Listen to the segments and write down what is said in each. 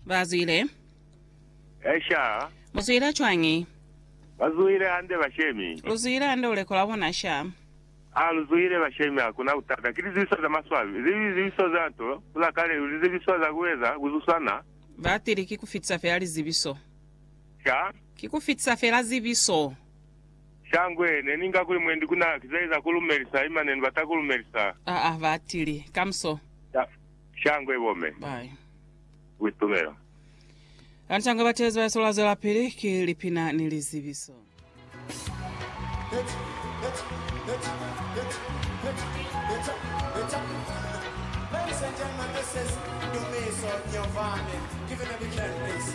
Bazwile. Esha, Mu zwile cwañi? ba zuhile hande bashemi. Lu zwile hande uleko lwa bona sha? A lu zuhile bashemi, hakuna butata. Ki lizebiso za maswabi, ze li lizebiso za nto, kula kale, lu lizebiso za ku eza, ku zusana. Batili, Ki ku fitisa fela lizebiso. Sha? Ki ku fitisa fela zebiso. Shangwe, ne ni nga kuli mwendi ku na kizaeza ku lumelisa, ima ne ni bata ku lumelisa. A a ba tili, Kamuso. Sha, shangwe bo me. Bai. Ku itumela. Ani shangwe ba tezi ba yesu la zwelapili, ki lipina ni lizibiso. Ladies and gentlemen, this is Dumiso Nyovane. Give it a big hand, please.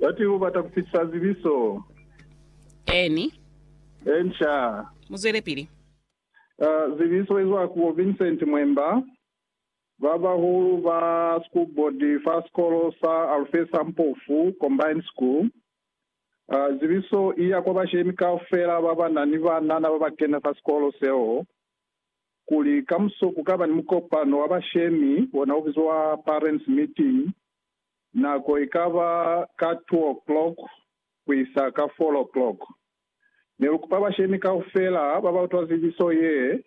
Bati u bata ku fitisa zibiso. Eeni. Eeni, sha. Mu zwelepili. Uh, zibiso izwa ku bo Vincent Mwemba, ba bahulu ba school board fa sikolo sa Alfesa Mpofu Combined School. Uh, zibiso i ya kwa bashemi kaufela ba ba na ni banana ba ba kena fa sikolo seo, kuli kamuso ku ka ba ni mukopano wa bashemi ona u bizwa parents meeting. Nako ikaba ka two o'clock kuisa ka four o'clock. Nelukupa bashemi kaufela babautwa zibiso yee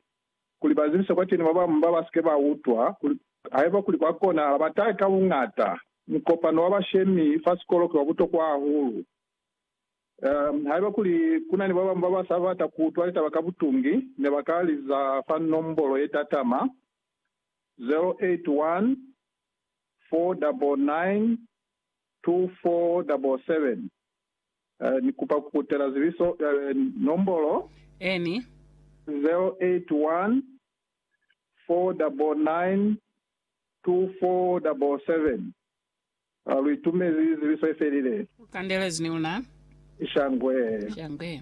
kuli bazibise kwateni babamu babasike bautwa kuli haiba kuli kwakonahala batahe ka buñata. Mukopano wa bashemi fa sikolo ki wabutokwa hahulu. Haiba kuli kunani babamu babasa bata kuutwa litaba ka butungi, nebaka liza fa nombolo yetatama, 081 4992477 Ni kupa ku kutela zibiso nombolo Eni. 0814992477 Lu itumezi zibiso ifelile. Kandelezi ni una. Shangwe. Shangwe.